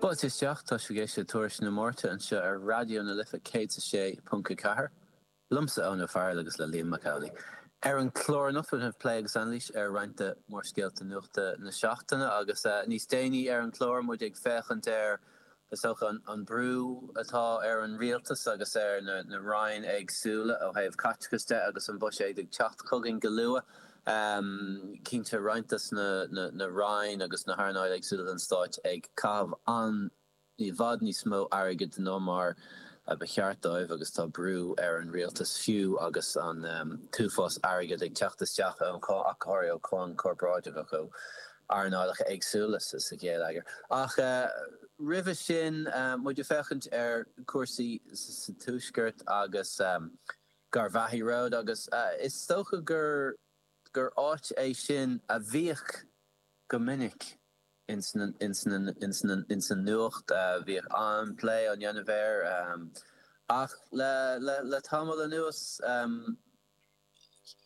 Buaite isteach, tá sibh ag éisteacht le Tuairisc na Márta anseo ar Raidió na Life 106.4, liomsa Eoin Ó Fearghail agus le Liam Mac Amhlaigh. Ar an chlár anocht beidh plé agus anailís ar roinnt de mhórscéalta nuachta na seachtaine agus níos déanaí ar an chlár muid ag féachaint ar Is dócha an brú atá ar an Rialtas agus ar na ranna éagsúla ó thaobh caiteachais de agus an Buiséad ag teacht chugainn go luath, cinnte roinnt de na ranna agus na hearnálacha éagsúla den Stát ag caitheamh i bhfad níos mó airgid ná mar a ba cheart dóibh agus tá brú ar an Rialtas fiú agus an t-uafás airgid ag teacht isteach ó thaobh cáin chorparáideach ó. earnálacha éagsúla sa gheilleagar. Ach roimhe sin, muid ag féachaint ar chúrsaí sa Tuaisceart agus Garvaghy Road agus is dócha gur áit é sin a bhíodh go minic insan nuacht, bhíodh an-phlé á dhéanamh air. Ach le tamall anuas.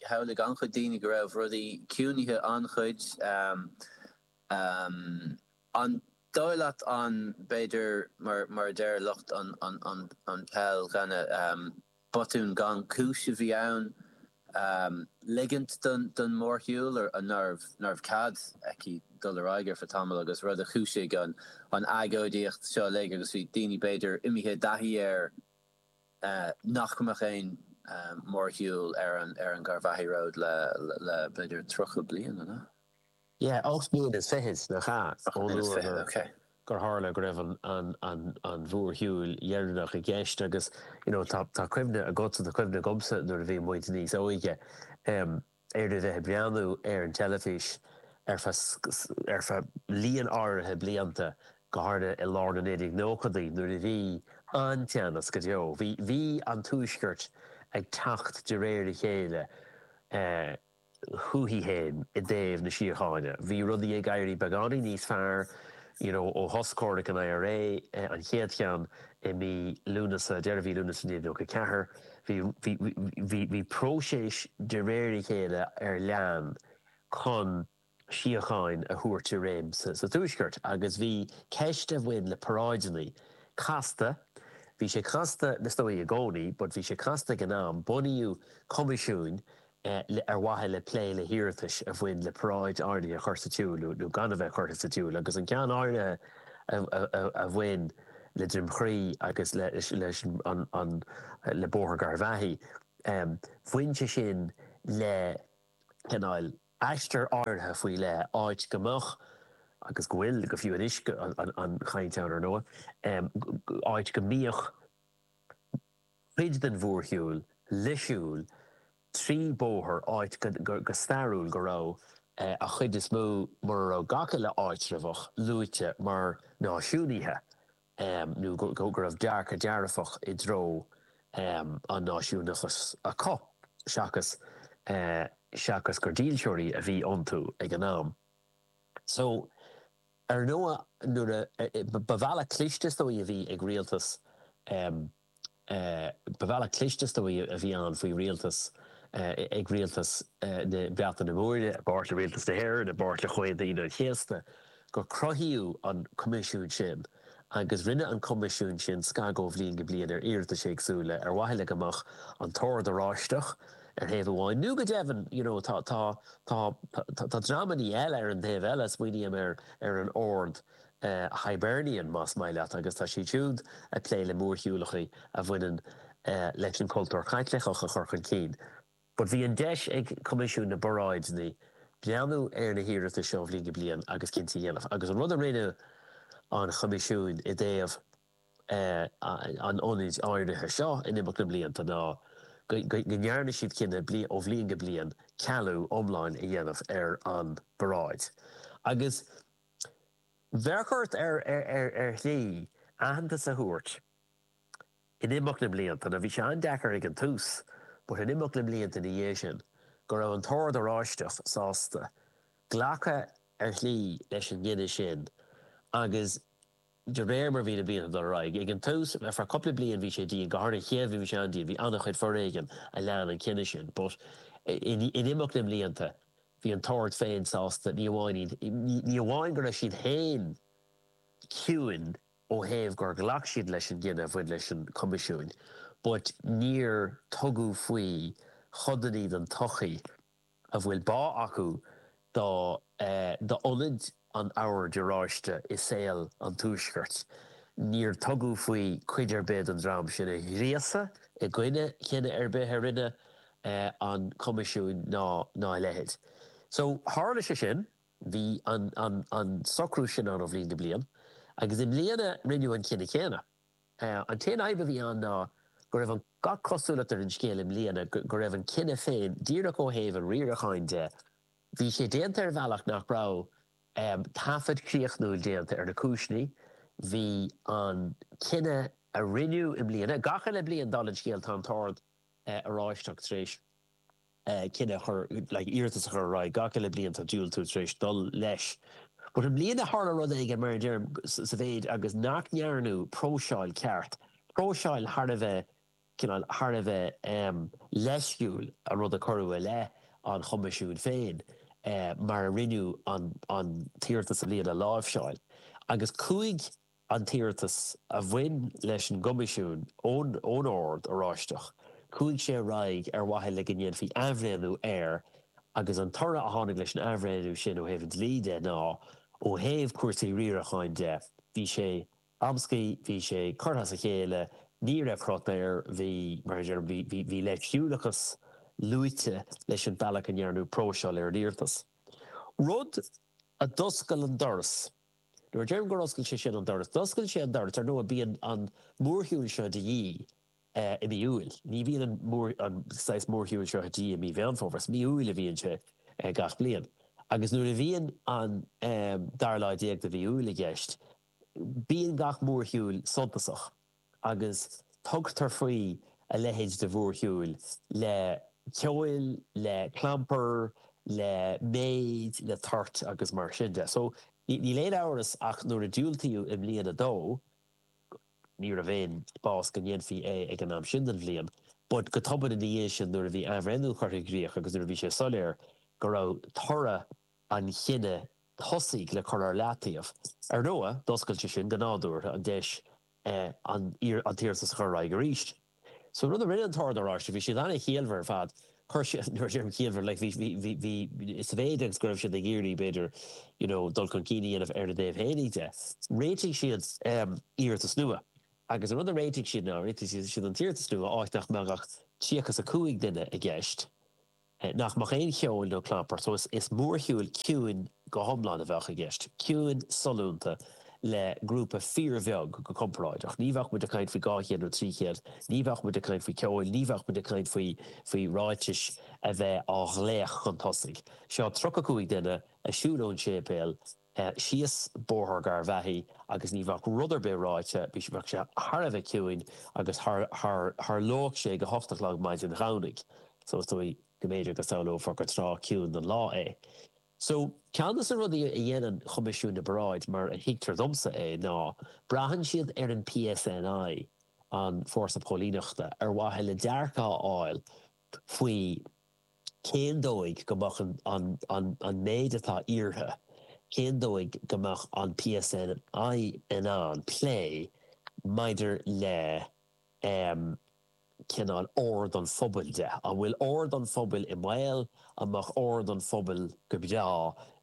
Shamhlaigh an-chuid daoine go raibh rudaí ciúnaithe an-chuid. An dóigh leat arbh fhéidir mar a déarfadh lucht an Chaighdeáin gur botún gan chúis a bhí ann ligint don mhórshiúl nárbh cead aici dul ar aghaidh ar feadh tamaill agus rud a chúisigh an agóidíocht seo uilig agus bhí daoine b'fhéidir imithe i dtaithí air. nach mbeadh aon mhórshiúl ar an Garvaghy Road le b'fhéidir tríocha bliain, an ea? Yeah, ocht mbliana is fiche, nach ea, ón uair gur tharla go raibh an mhórshiúil dheireanach i gceist agus, you know, tá cuimhne agatsa, tá cuimhne agamsa nuair a bhí muid níos óige, ar a bheith ag breathnú ar an teilifís ar feadh líon áirithe blianta, go háirithe i lár na 1990idí nuair a bhí an-teannas go deo. Bhí an Tuaisceart ag teacht de réir a chéile chuige féin i dtaobh na síochána. Bhí rudaí ag éirí beagáinín níos fearr you know, ó shos comhraic an IRA, an chéad cheann, i mí Lúnasa, deireadh mhí Lúnasa 1994, bhí, bhí, bhí, bhí próiseas de réir a chéile ar bun chun síocháin a thabhairt i réim sa, sa Tuaisceart agus bhí ceist a bhain le paráideanna casta, bhí sé casta, is dóigh i gcónaí, but bhí sé casta ag an am, bunaíodh coimisiún le ar mhaithe le plé le hiarratais a bhain le paráid áirithe a chur sa tsiúl nó gan a bheith curtha sa tsiúl agus an ceann áirithe a bhain le Droim Crí agus leis an le bóthar Gharbhachaidh. Bhain sé sin le cineál aistear áirithe faoi leith áit go mbeadh, agus go bhfuil go fiú anois an-chaint ann ar ndóigh, áit go mbíodh cuid den mhórshiúil ag siúl trí bóthar áit go stairiúil go raibh an chuid is mó, mura raibh gach uile áitreabhach, luaite mar náisiúnaithe nó go raibh dearcadh dearfach i dtreo an náisiúnachais acu seachas seachas gur dílseoirí a bhí iontu ag an am so. Ar ndóigh nuair a, ba bhealach cliste is dóigh a bhí ag rialtas, ba bhealach cliste is dóigh a bhí ann faoi rialtas, ag rialtas na Breataine Móire, i bpáirt le rialtas na hÉireann, i bpáirt le Comhaonta Aoine an Chéasta, gur cruthaíodh an Coimisiún sin agus rinne an Coimisiún sin scagadh ó bhliain go bliain ar iarratais éagsúla ar mhaithe le go mbeadh an tOrd Oráisteach, ar thaobh amháin, nó go deimhin you know tá, tá, tá, tá, tá dreamannaí eile ar an taobh eile, smaoiním ar, ar an Ord Hibernian más maith leat agus tá siad siúd ag plé le mórshiúlacha a bhaineann leis an chultúr Chaitliceach a chur chun cinn but bhí an deis ag Coimisiún na bParáideanna breathnú ar na hiarratais seo ó bhliain go bliain agus cinntí a dhéanamh agus an rud a rinne an Coimisiún i dtaobh an ionaid áirithe seo in imeacht na mblianta ná go ndearna siad cinneadh ó bhliain go bliain cealú iomlán a dhéanamh ar an bparáid. Agus bheadh ort, ar shlí, aitheantas a thabhairt in imeacht na mblianta, nó bhí sé an-deacair ag an tús, but in imeacht na mblianta ina dhiaidh sin, go raibh an tOrd Oráisteach sásta glacadh ar shlí leis an gcinneadh sin agus, de réir mar bhí na blianta ag dul ar aghaidh. Ag an tús, ar feadh cupla bliain bhí sé dian, go háirithe an chéad bhliain bhí sé an-dian, bhí an-chuid foréigean a lean an cinneadh sin, but in imeacht na mblianta bhí an tOrd féin sásta, ní amháin iad, ní amháin go raibh siad féin ciúin ó thaobh gur ghlac siad leis an gcinneadh a bhain leis an Choimisiún, but níor tugadh faoi chodannaí den tsochaí. a bhfuil bá acu do do ionad an Oird Oráistigh i saol an Tuaiscirt, níor tugadh faoi cuid ar bith den dream sin a ghríosadh i gcoinne chinneadh ar bith a rinne an Coimisiún ná a leithéid. So, tharla sé sin. Bhí an socrú sin ann ó bhliain go bliain agus i mbliana rinneadh an cinneadh céanna. An t-aon fhadhb a bhí ann ná go raibh an gach cosúlacht ar an scéal i mbliana go raibh an cinneadh féin, díreach ó thaobh an riaracháin de, bhí sé déanta ar bhealach nach raibh taifead críochnúil déanta ar na cúiseanna. Bhí an cinneadh a rinneadh i mbliana, gach aon bhliain, dála an scéil, tá an tOrd Oráisteach tar éis. cinneadh a chur, like iarratas a chur ar aghaidh gach uile bhliain tá diúltú tar éis dul leis but i mbliana tharla rud éigin mar a deirim sa mhéid agus nach ndearnadh próiseáil ceart, próiseáil thar a bheith cineál thar a bheith leisciúil a rud a cuireadh i leith an Choimisiúin féin mar a rinneadh an an t-iarratas a bhí le láimhseáil agus chuaigh an t-iarratas a bhain leis an gCoimisiún ón Ord Oráisteach, chuaigh sé ar aghaidh ar mhaithe le go ndéanfaí athbhreithniú air agus an toradh a tháinig leis an athbhreithniú sin ó thaobh an dlí de ná, ó thaobh cúrsaí riaracháin de, bhí sé amscaí, bhí sé curtha as a chéile, ní raibh cruth air, bhí, mar a deirim, bhí, bhí, bhí leisciúlachas luaite leis an bhealach a ndearnadh próiseáil ar an iarratas. Rud a d'oscail an doras. Nuair a deirim gur oscail sé sin an doras, d'oscail sé an doras. Ar ndóigh, bíonn an mórshiúl seo de dhíth i mí Iúil. Ní bhíonn an saghas mórshiúl seo de dhíth i mí Mheán Fómhair. Is mí Iúil a bhíonn sé gach bliain. Agus nuair a bhíonn an dara lá déag de mhí Iúil i gceist, bíonn gach mórshiúl suntasach. agus tugtar faoi a leithéid de mhórshiúl, le ceol, le clampar, le méid, le toirt agus mar sin de. So, níl aon amhras ach nuair a diúltaíodh i mbliana dó, ní raibh aon spás go ndéanfaí é ag an am sin den bhliain, but go tobann ina dhiaidh sin nuair a bhí athbhreithniú curtha i gcrích agus nuair a bhí sé soiléir go raibh toradh an chinnidh tosaigh le cur ar leataobh, ar ndóigh, d'oscail sé sin, go nádúrtha, an deis an t-iarratas a chur ar aghaidh arís. So an rud a rinne an tOrd Oráisteach, bhí siad an-chiallmhar ar fad, chuir siad, nuair a deirim ciallmhar, like bhí, bhí, bhí, bhí, sa mhéid agus go raibh siad ag iarraidh, b'fhéidir, you know, dul chun cinn a dhéanamh ar a dtaobh féinig de, réitigh siad iarratas nua. Agus an rud a réitigh siad ná, réitigh siad an t-iarratas nua áit nach mbeadh ach 35 duine i gceist, Nach mbeadh aon cheol nó clampar so. Is mórshiúl ciúin go hiomlán a bheadh i gceist. Ciúin, sollúnta, le grúpa fíorbheag go comparáideach. Ní bheadh muid ag caint faoi dhá chéad nó trí chéad. Ní bheadh muid ag caint faoi cheol. Ní bheadh muid ag caint faoi ráiteas a bheith á ghlacadh chun tosaigh. Seo tríocha cúig duine ag siúl ón séipéal. síos Bóthar Gharbhachaidh agus ní bheadh rud ar bith ráidhte, bheadh sé thar a bheith ciúin agus tharlódh sé ag a hocht a chlog maidin Domhnaigh so is dóigh go mb'fhéidir go samhlófar gur tráth ciúin den lá é. So ceann de na rudaí a dhéanann Coimisiún na bParáid mar a thuigtear domsa é ná braitheann siad ar an PSNI, an Fórsa Póilíneachta, ar mhaithe le dearcadh a fháil faoi, cén dóigh go mbeadh an méid atá iarrtha, cén dóigh go mbeadh an PSNI in ann plé maidir le cineál ord an phobail de. An bhfuil ord an phobail i mbaol? An mbeadh ord an phobail go breá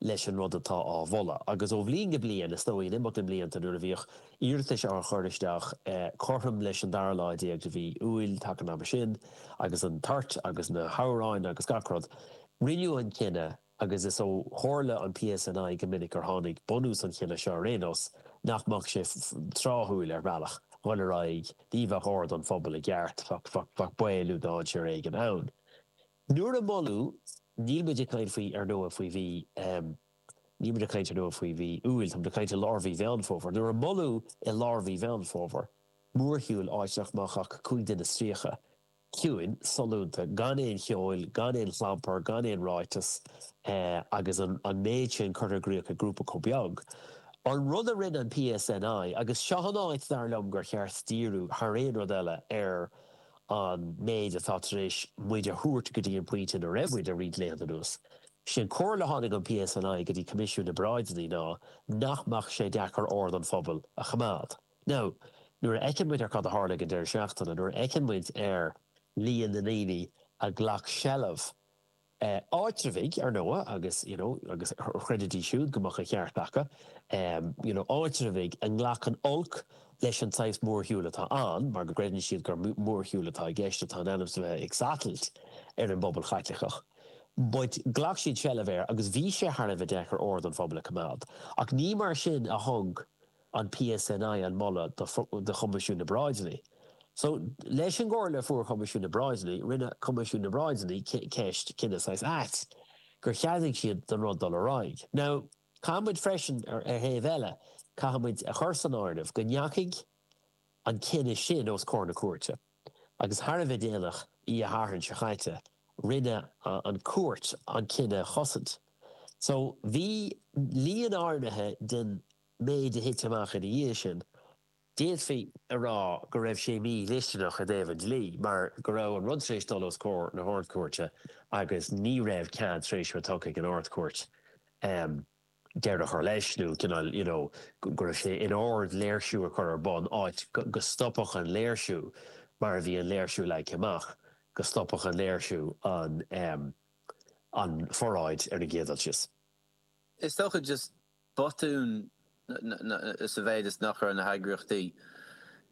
leis an rud atá á mholadh? Agus ó bhliain go bliain, is dóigh, in imeacht na mblianta nuair a bhíodh iarratais á chur isteach cothrom leis an dara lá déag de mhí Iúil, taca an ama sin, agus an toirt agus na hamhráin agus gach rud, rinneadh an cinneadh, agus is ó chomhairle an PSNI go minic ar tháinig bunús an chinnidh seo ar aon nós, nach mbeadh sé tráthúil, ar bhealach, dhul ar aghaidh, ní bheadh ord an phobail i gceart, bheadh baol nó dainséar éigin ann. Nuair a moladh, níl muid ag caint faoi, ar ndóigh, faoi mhí. Níl muid ag caint ar ndóigh faoi mhí Iúil, tá muid ag caint i lár mhí Mheán Fómhair. Nuair a moladh i lár mhí Mheán Fómhair, mórshiúl, áit nach mbeadh ach cúig duine is tríocha, ciúin, sollúnta, gan aon cheol, gan aon chlampar, gan aon ráiteas, agus an méid sin curtha i gcríoch ag grúpa chomh beag, an rud a rinne an PSNI, agus seo an áit, dar liom, gur cheart díriú, thar aon rud eile, ar an méid atá tar éis muid a thabhairt go dtí an pointe ina raibh muid le roinnt laethanta anuas. Sé an comhairle a tháinig ón PSNI go dtí Coimisiún na bParáideannaí ná nach mbeadh sé deacair ord an phobail a choimeád. Now, nuair a fheiceann muid ar cad a tharla ag an deireadh seachtaine, nuair a fheiceann muid ar líon na ndaoine a ghlac seilbh áitreabhaigh, ar ndóigh, agus, you know, agus chreidfidís siúd go mbeadh an ceart acu, you know, áitreabhaigh a nglacann olc leis an tsaghas mórshiúil atá ann, mar go gcreideann siad gur mórshiúl atá i gceist atá in ainm is a bheith ag satailt ar an bpobal Chaitliceach. But ghlac siad seilbh air agus bhí sé thar a bheith deacair ord an phobail a choimeád. Ach ní mar sin a thug an PSNI an moladh do Choimisiún na bParáideannaí. So, leis an gcomhairle a fuair Coimisiún na bParáideannaí, rinne Coimisiún na bParáideannaí ceist cinneadh saghas ait gur cheadaigh siad don rud dul ar aghaidh. Now, caithfimid freisin, ar thaobh eile, caithfimid a chur san áireamh go ndeachaigh an cinneadh sin os comhair na cúirte. agus thar a bheith déanach oíche Shathairn seo chaite rinne an Cúirt an cinneadh a chosaint. So bhí líon áirithe den méid a thit amach ina dhiaidh sin, d'fhéadfaí a rá go raibh sé mídhlisteanach i dtaobh an dlí mar go raibh an rud tar éis dul os comhair na hArd-Cúirte agus ní raibh cead tar éis a bheith tugtha ag an Ard-Chúirt deireadh a chur leis nó cineál you know go raibh sé in ann léirsiú a chur ar bun áit go stopfadh an léirsiú mar a bhí an léirsiú leagtha amach go stopfadh an léirsiú an ehm an pharáid ar an gcéad dul síos. Is dócha just botún sa mhéid is nach raibh na heagraíochtaí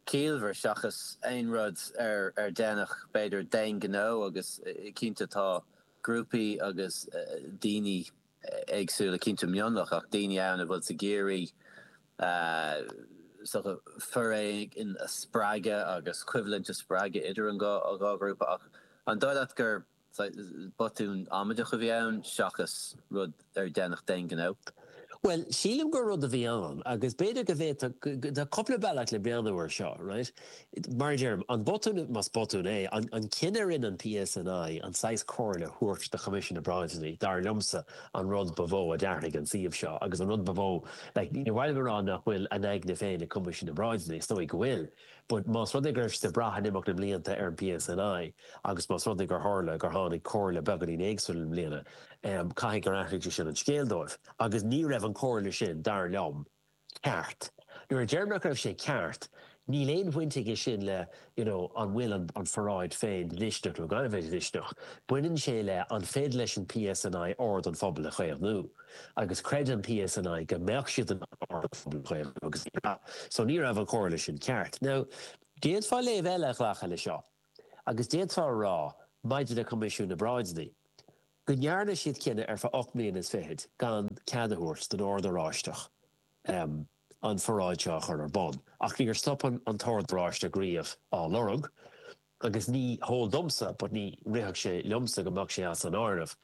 ciallmhar seachas aon rud ar ar déanadh b'fhéidir d'aon ghnó agus cinnte tá grúpaí agus daoine eh éagsúla, cinnte mionlach, ach daoine ann a bhfuil siad ag iarraidh so foréigean a spreagadh agus coimhlint a spreagadh idir an dhá ghrúpa. Ach an dóigh leat gur botún amaideach a bhí ann seachas rud ar deineadh d'aon ghnó? Bhuel, sílim gur rud a bhí ann, agus b'fhéidir go bhféadfadh, tá cupla bealach le breathnú ar seo, right? Mar a deirim, an botún, más botún é, an cinneadh a rinne an PSNI an saghas comhairle a thabhairt do Choimisiún na bParáideanna, dar liomsa, an rud ba mhó a d'athraigh an suíomh seo agus an rud ba mhó, like, níor mhaith liom a rá nach bhfuil a n-aigne féin ag Coimisiún na bParáideanna, is dóigh go bhfuil, but más rud é go raibh siad ag brath in imeacht na mblianta ar an PSNI agus más rud é gur tharla gur tháinig comhairle beagáinín éagsúil i mbliana, em, caithfidh gur athraigh sé sin an scéal dóibh. Agus ní raibh an chomhairle sin, dar liom, ceart. Nuair a deirim nach raibh sé ceart, níl aon bhaint aige sin le, you know, an bhfuil an an pharáid féin dlisteanach nó gan a bheith dlisteanach. Baineann sé le an féidir leis an PSNI ord an phobail a chaomhnú. Agus chreid an PSNI go mbeadh siad in ann ord an phobail a chaomhnú agus ní raibh. So ní raibh an chomhairle sin ceart. Now, d'fhéadfá léamh eile a ghlacadh le seo agus d'fhéadfá a rá, maidir le Coimisiún na bParáideanna, go ndearna siad cinneadh ar feadh ocht mbliana is fichid gan cead a thabhairt don Ord Oráisteach an pharáid seo a chur ar bun. Ach níor stop an tOrd Oráisteach riamh á lorg agus ní heol domsa, but ní rithfeadh sé liomsa go mbeadh sé as an áireamh,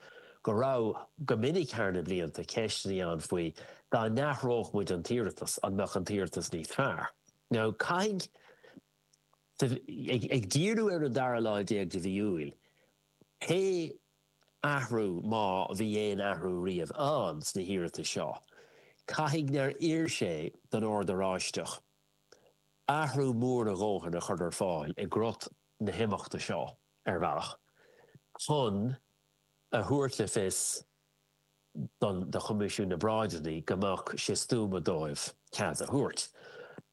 go raibh, go minic thar na blianta, ceisteannaí ann faoi, dá n-athródh muid an t-iarratas, an mbeadh an t-iarratas níos fearr? Now, caithfidh, ag díriú ar an dara lá déag de mhí Iúil, Pé athrú, má bhí aon athrú riamh ann sna hiarratais seo, caithfidh nár oir sé don Ord Oráisteach athrú mór a dhóthain a chur ar fáil i gcrot na himeachta seo, ar bhealach, chun a thabhairt le fios don do Choimisiún na bParáideannaí go mbeadh sé stuama dóibh cead a thabhairt.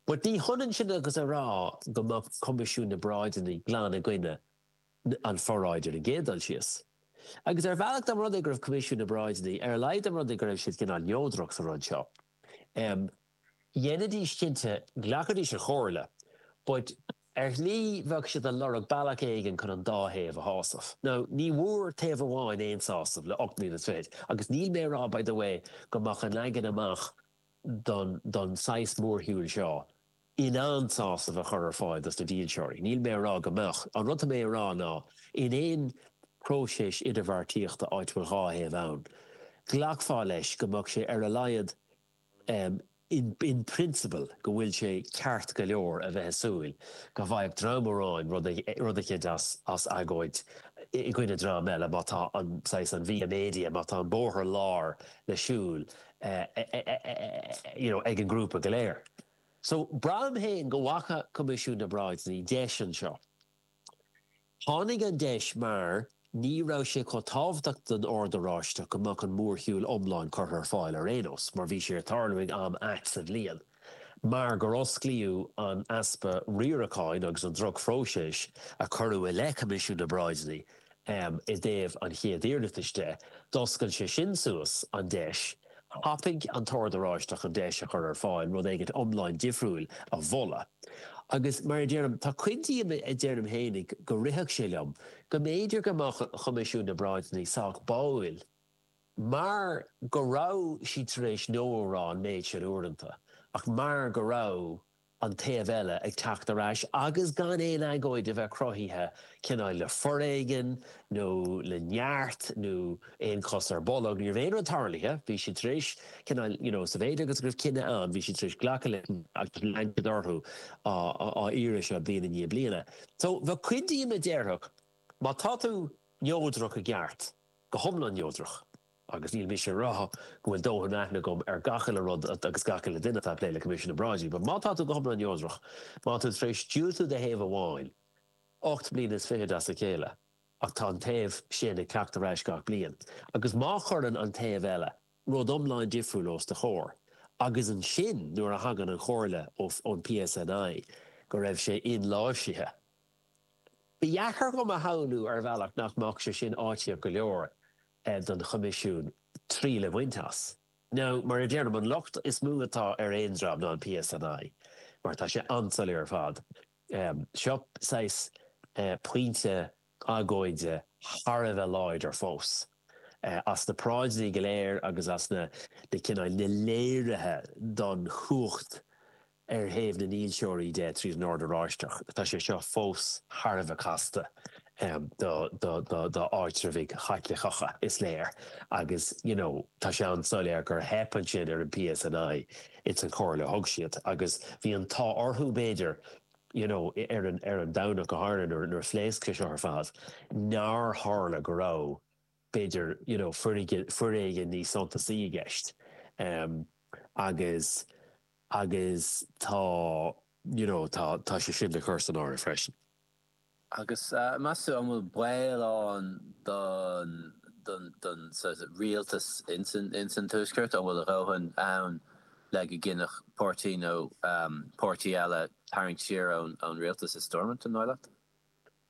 But ní hionann sin agus a rá go mbeadh Coimisiún na bParáideannaí glan i gcoinne an pharáid ar an gcéad dul síos. Agus ar bhealach dá mba rud é go raibh Coimisiún na bParáideanna, ar a laghad dá mba rud é go raibh siad cineál neodrach sa rud seo, em, dhéanfaidís cinnte de, ghlacfaidís an chomhairle but ar shlí bheadh siad ag lorg bealach éigin chun an dá thaobh a shásamh. Now ní bhfuair taobh amháin aon sásamh le ocht mbliana is fichid agus níl mé a rá by the way go mbeadh an leagan amach don, don saghas mórshiúil seo in ann sásamh a chur ar fáil dos na dílseoirí. Níl mé a rá go mbeadh. An rud atá mé a rá ná, in aon próiseas idirbheartaíochta áit bhfuil dhá thaobh ann, ghlacfá leis go mbeadh sé ar a laghad in principle go bhfuil sé ceart go leor a bheith ag súil go bhfaigheadh dream amháin rud eicint as agóid i gcoinne dream eile má tá an saghas, an via media, má tá an bóthar láir le siúl you know ag an ngrúpa go léir. So, braithim féin go bhfaca Coimisiún na bParáideanna deis anseo. Tháinig an deis mar ní raibh sé chomh tábhachtach don Ord Oráisteach go mbeadh an mórshiúil iomlán curtha ar fáil ar aon nós mar bhí sé ag tarlú ag am ait sa bhliain mar gur osclaíodh an easpa riaracháin agus an drochphróiseas a cuireadh i leith Coimisiún na bParáideanna I dtaobh an chéad iarratais de, d'oscail sé sin suas an deis, thapaigh an tOrd Oráisteach an deis a chur ar fáil rud éigint iomlán difriúil a mholadh. Agus mar a deirim, tá cuid díom a deirim fhéinig go rithfeadh sé liom go mb'fhéidir go mbeadh an Choimisiún na bParáideanna sách báúil mar go raibh siad tar éis 'No' a rá an méid sin uaireanta ach mar go raibh an taobh eile ag teacht ar ais agus gan aon agóid a bheith cruthaithe, cineál le foréigean nó le neart nó aon chos ar bolg. Ní raibh aon rud tarlaithe. Bhí siad tar éis, cineál, you know, sa mhéid agus go raibh cinneadh ann, bhí siad tar éis glacadh leis agus lean siad orthu á iarraidh seo bliain i ndiaidh bliana. So, bheadh cuid díom a déarfadh, má tá tú neodrach i gceart, go hiomlán neodrach, Agus níl mise a rá go bhfuil dóthain aithne agam ar gach uile rud agus gach uile duine atá ag plé le Coimisiún na bParáidí, but má tá tú go hiomlán neodrach, má tá tú tar éis diúltú do thaobh amháin ocht mbliana is fichid as a chéile ach tá an taobh sin ag teacht ar ais gach bliain agus má chuireann an taobh eile rud iomlán difriúil os do chomhair agus ansin nuair a thagann an chomhairle ón PSNI go raibh sé inláimhsithe. Ba dheacair dhom a shamhlú ar bhealach nach mbeadh sé sin áitíoch go leor don Choimisiún triail a bhaint as. Now mar a deirim, an locht is mó atá ar aon dream ná an PSNI mar tá sé an-soiléir ar fad. Seo saghas pointe agóide thar a bheith láidir fós as na paráideanna go léir agus as na cineál, na léirithe don chumhacht Ar thaobh na ndílseoirí de, tríd an Ord Oráisteach, tá sé seo fós thar a bheith casta d'áitreibhaigh Chaitliceacha, is léir, agus, you know, tá sé an-soiléir gur theip ansin ar an PSNI ins an chomhairle a thug siad agus bhí an t-ádh orthu, b'fhéidir, you know, ar an Domhnach go háirithe nuair a phléasc sé seo ar fad, nár tharla go raibh. b'fhéidir, you know, foiréigean níos suntasaí i gceist. Agus, agus tá, you know, tá, tá sé sin le cur san áireamh freisin. Agus meas tú, an bhfuil baol ann don, don, don sort of rialtas ins an, ins an Tuaisceart, an bhfuil a dhóthain ann le go gcinnfeadh páirtí nó páirtí eile tarraingt siar ón, ón rialtas i Stormont, an dóigh leat?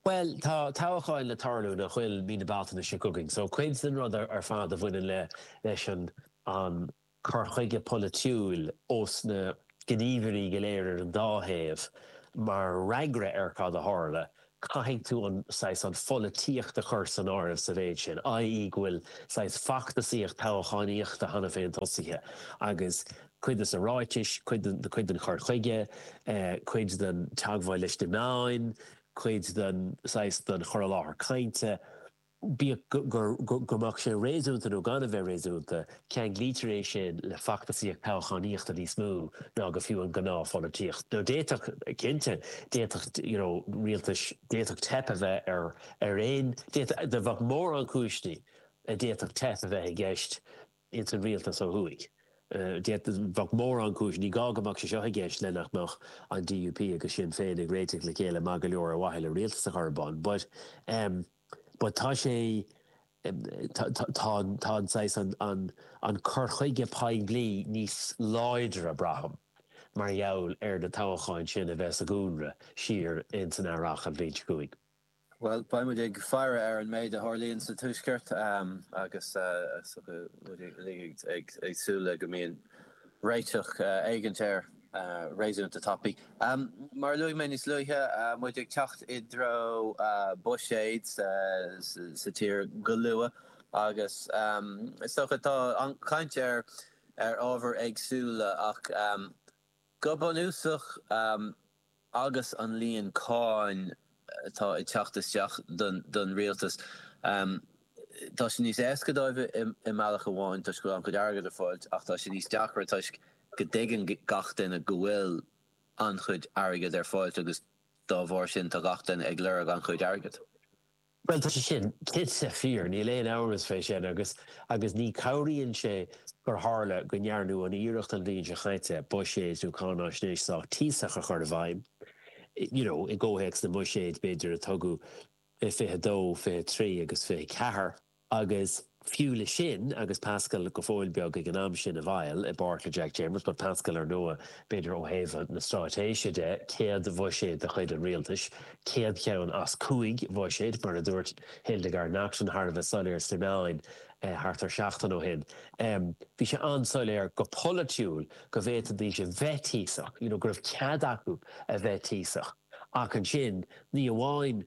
Bhuel, tá toghacháin le tarlú, nach bhfuil, mí na Bealtaine seo chugainn, so cuid den rud ar fad a bhaineann le, leis an, an cur chuige polaitiúil ós na gníomhairí go léir ar an dá thaobh, mar fhreagra ar cad a tharla, caithfidh tú an, saghas, an pholaitíocht a chur san áireamh sa mhéid sin, i. e. go bhfuil, saghas, feachtasaíocht toghachánaíochta cheana féin tosaithe agus cuid de na ráitis, cuid den, cuid den chur chuige, eh, cuid den teagmháil leis na meáin, cuid den saghas den chur i láthair cainte, bíodh go mbeadh sé réasúnta nó gan a bheith réasúnta, ceanglaítear é sin le feachtasaíocht toghchánaíochta níos mó ná go fiú an gnáthpholaitíocht. Nó d'fhéadfadh, cinnte, d'fhéadfadh, you know, rialtais, d'fhéadfadh teip a bheith ar aon, d'fhéadfadh, bheadh mórán cúiseanna a d'fhéadfadh teip a bheith i gceist ins an Rialtas ó thuaidh. Bheadh mórán cúis, ní gá go mbeadh sé seo i gceist, le nach mbeadh an DUP agus Sinn Féin ag réiteach le chéile maith go leor ar mhaithe le Rialtas a chur ar bun. But but tá sé tá tá an saghas an an an cur chuige poiblí níos láidre, braithim, mar gheall ar na toghacháin sin a bheith sa gcúlra siar ins an Earrach an bhliain seo chugainn. Bhuel, beidh muid ag faire ar an méid a tharlaíonn sa Tuaisceart agus muid uilig ag súil le go mbíonn réiteach éigin air réasúnta tapaidh. Mar a luaigh mé níos luaithe, muid ag teacht i dtreo buiséid sa tír go luath agus is dócha tá an-chaint ar ábhair éagsúla ach, Go bunúsach, agus an líon cáin atá ag teacht isteach don rialtas, tá sé níos éasca dóibh i mbealach amháin toisc go bhfuil an-chuid airgead ar fáil ach tá sé níos deacra toisc go dtuigeann gach duine go bhfuil an-chuid airgead ar fáil agus dá bharr sin tá gach duine ag lorg an-chuid airgead. Bhuel tá sé sin cinnte fíor, níl aon amhras fé sin agus agus ní chabhraíonn sé gur tharla go ndearnadh an iarracht an bhliain seo caite, buiséid nó cáinaisnéis sách tíosach a chur i bhfeidhm, you know, i gcomhthéacs na mbuiséid b'fhéidir a tugadh isteach i 22, 23 agus 24. Agus fiú le sin, agus Paschal go fóill ag an am sin i bhfeighil, i bpáirt le Jack Chambers, but Paschal ar ndóigh, b'fhéidir ó thaobh na stráitéise de, céad bhuiséad de chuid an Rialtais, céad cheann as cúig bhuiséid, mar a dúirt Hildegarde Naughton thar a bheith soiléir sna meáin thart ar seachtain ó shin. Bhí sé an-soiléir go polaitiúil go bhféadfaidís a bheith tíosach, you know go raibh cead acu a bheith tíosach. Ach ansin, ní amháin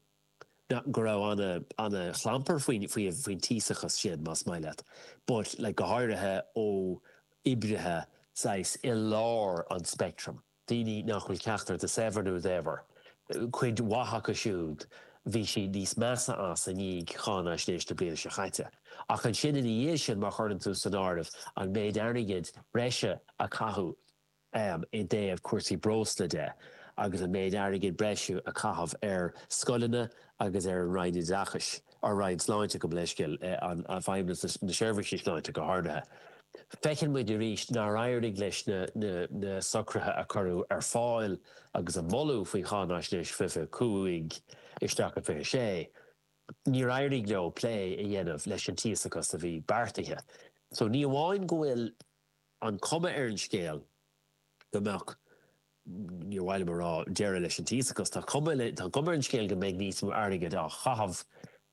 Nach, go raibh ana, ana chlampar faoin, faoi, faoin tíosachas sin, más maith leat. But go háirithe ó oibrithe saghas i lár an speictrim, daoine nach bhfuil ceachtar de saibhir nó daibhir, cuid mhaith acu siúd bhí siad níos measa as i ndiaidh cháinaisnéis na bliana seo caite. Ach ansin ina dhiaidh sin má chuireann tú san áireamh an méid airgid breise a caitheadh, am i dtaobh cúrsaí breosla de agus an méid airgid breise a caitheadh ar scoileanna agus ar an Roinn Oideachais, ar an Roinn Sláinte gabh mo leithscéal, ar Fheidhmeannacht na Seirbhíse sláinte go háirithe. Feiceann muid arís nár éirigh leis na socruithe a cuireadh ar fáil agus a moladh faoi Cháinaisnéis fiche a cúig isteach go fiche a sé, níor éirigh leo plé a dhéanamh leis an tíosachas a bhí beartaithe. So ní amháin go bhfuil. an cuma ar an scéal go mbeadh, níor mhaith liom a rá, deireadh leis an tíosachas. Ach tá an cuma ar an scéal go mbeidh níos mó airgid á chaitheamh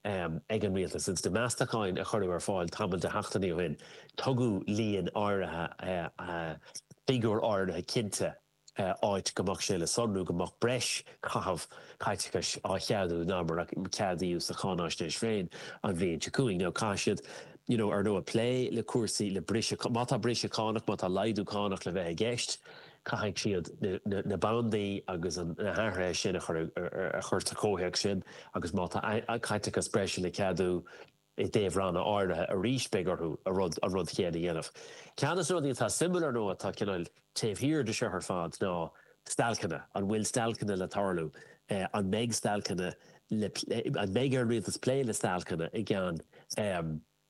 ag an Rialtas. Ins na Meastacháin a cuireadh ar fáil tamall de sheachtainí ó shin tugadh líon áirithe, figiúr áirithe cinnte, áit go mbeadh sé le sonrú go mbeadh breis caitheamh caiteachais á cheadú ná mar a ceadaíodh sa cháinaisnéis féin an bhliain seo chugainn. Nó caithfidh siad, you know, ar ndóigh, plé le cúrsaí, le briseadh, má tá briseadh cánach, má tá laghdú cánach le bheith i gceist, caithfidh siad na bandaí agus na hathruithe sin a chur sa chomhthéacs sin agus má tá caiteachas breise le ceadú, I dtaobh ranna áirithe arís beidh orthu an rud chéanna a dhéanamh. Ceann dos na rudaí atá suimiúil ar ndóigh atá cineál taobh thiar de seo ar fad ná stailceanna. An bhfuil stailceanna le tarlú? An mbeidh stailceanna le plé? An mbeidh ar an Rialtas plé le stailceanna i gceann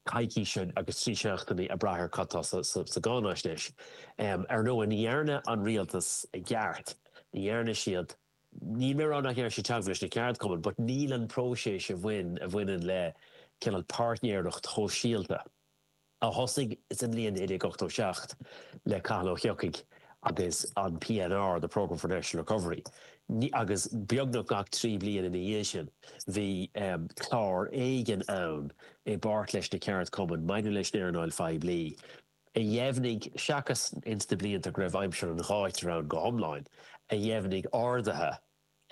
coicíse agus trí seachtainí ag brath ar cad tá sa gcáinaisnéis? Ar ndóigh ní dhearna an Rialtas i gceart, ní dhearna siad. níl mé ag rá nach ndearna siad teagmháil leis na ceardchumainn but níl an próiseas a bhain, a bhaineann le cineál páirtnéireacht shóisialta a thosaigh sa mbliain 1987 le Cathal Ó hEochaidh agus an PNR, the Programme for National Recovery, ní, agus beagnach gach trí bliana ina dhiaidh sin bhí clár éigin ann i bpáirt leis na ceardchumainn maidir leis an earnáil phoiblí. a dheimhnigh, seachas ins na blianta go raibh aimsir an ghátair ann go hiomlán, a dheimhnigh arduithe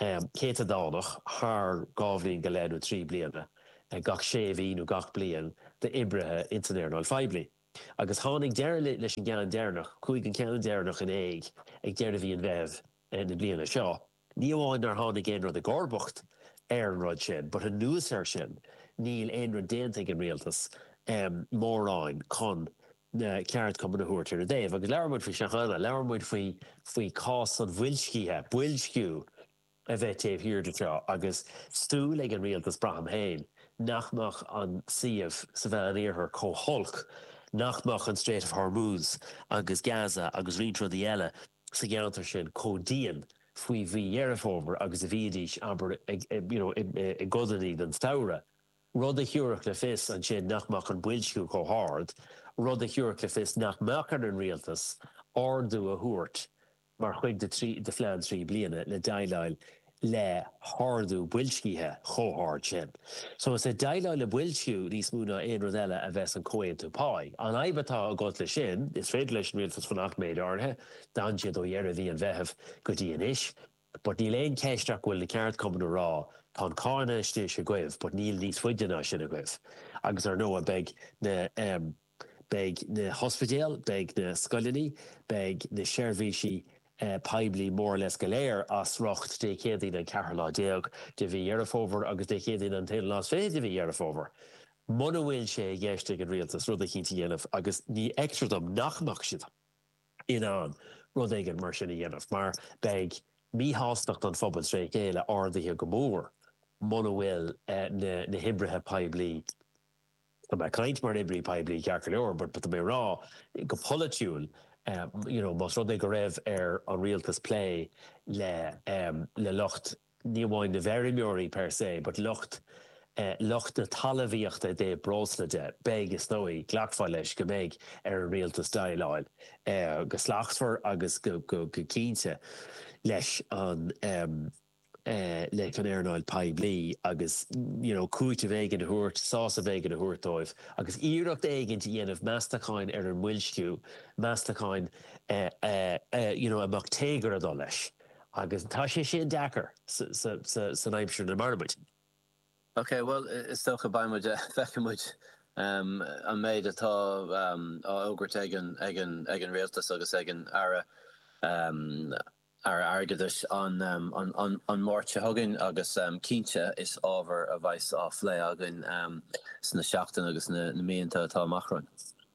céatadánach thar dhá bhliain go leith nó trí bliana gach sé mhí nó gach bliain d'oibrithe ins an earnáil phoiblí. Agus tháinig deireadh leis an gceann deireannach, chuaigh an ceann deireannach in éag ag deireadh mhí an Mheithimh na bliana seo. Ní amháin nár tháinig aon rud i gcomharbacht ar an rud sin but anuas air sin níl aon rud déanta ag an Rialtas mórán chun na ceardchumainn a thabhairt ar a dtaobh. Agus labhair muid faoi seo cheana, labhair muid faoi chás an bhoilscithe, boilsciú a bheith taobh thiar de seo agus súil ag an Rialtas, braithim féin, nach mbeadh an suíomh sa Mheánoirthear chomh holc, nach mbeadh an Strait of Hormuz agus Gaza agus roinnt rudaí eile, sa gceantar sin chomh dian faoi mhí Dheireadh Fómhair agus a bhíodís, abair, you know, i gcodannaí den samhradh, rud a thabharfadh le fios ansin nach mbeadh an boilsciú chomh hard, rud a thabharfadh le fios nach mbeadh ar an Rialtas ardú a thabhairt mar chuid de phlean trí bliana le déileáil le hardú boilscithe chomh hard sin. So is ag déileáil le boilsciú níos mó ná aon rud eile a bheas an comhaontú páí. An fhadhb atá agat leis sin, is féidir leis an Rialtas fanacht méid áirithe, d'fhan siad ó dheireadh mhí an Mheithimh go dtí anois, but níl aon cheist ach go bhfuil na ceardchumainn ag rá tá an cáinaisnéis agaibh but níl níos faide ná sin agaibh agus ar ndóigh beidh na Beidh na hospidéil, beidh na scoileanna, beidh na seirbhísí poiblí more or less go léir as riocht Dé Céadaoin an ceathrú lá déag de mhí Dheireadh Fómhair agus Dé Céadaoin an t-aonú lá is fiche de mhí Dheireadh Fómhair. Muna bhfuil sé i gceist ag an Rialtas rud eicínt a dhéanamh, agus ní fheictear dom nach mbeadh siad in ann rud éigin mar sin a dhéanamh mar beidh míshástacht an phobail tré chéile ardaithe go mór muna bhfuil na hoibrithe poiblí Tá mé ag caint mar oibrí poiblí ceart go leor but tá mé ag rá go polaitiúil you know más rud é go raibh ar an Rialtas plé le le lucht ní amháin na bhfeirmeoirí per se but lucht lucht na talamhaíochta i dtaobh breosla de beidh is dóigh glacfaí leis go mbeidh ar an Rialtas déileáil go slachtmhar agus go go cinnte leis an leis an earnáil phoiblí agus you know cúiteamh éigin a thabhairt, sásamh éigin a thabhairt dóibh agus iarracht éigint a dhéanamh meastacháin ar an mboilsciú, meastacháin you know a mbeadh téagar ag dul leis agus tá sé sin deacair san aimsir ina mairimid. Ok bhuel is dócha beidh muid feicfidh muid an méid atá á fhógairt ag an Rialtas agus ag an Aire. Aire Airgeadais an Mháirt seo chugainn agus cinnte is ábhar a bheidh's á phlé againn sna seachtainí agus na míonta atá amach romhainn.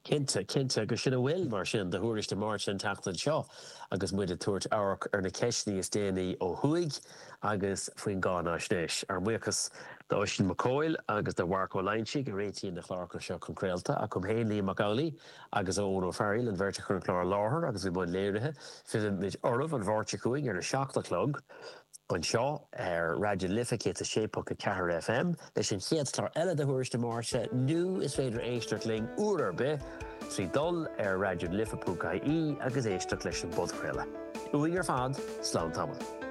Cinnte, cinnte agus sin a bhfuil mar sin do Thuairisc na Máirte an tseachtain seo agus muid ag tabhairt amharc ar na ceisteanna is déanaí ó thuaidh agus faoin gcáináisnéis. Ár mbuíochas do Oisín Mac Cóil agus do Mharc Ó Loinsigh a réitíonn na cláracha seo chun craolta. Uaim féin Liam Mac Amhlaigh. agus Eoin Ó Fearghail, an bheirt a chuir an clár i láthair agus a bhí i mbun léirithe, fillfimid oraibh, an Mháirt seo chugainn ar a seacht a chlog, anseo ar Raidió na Life 106.4 FM, leis an chéad chlár eile de Thuairisc na Máirte, nó is féidir éisteacht linn, uair ar bith, trí dhul ar raidionalife.ie agus éisteacht leis an bpodchraoladh. Uainn ar fad, slán tamall.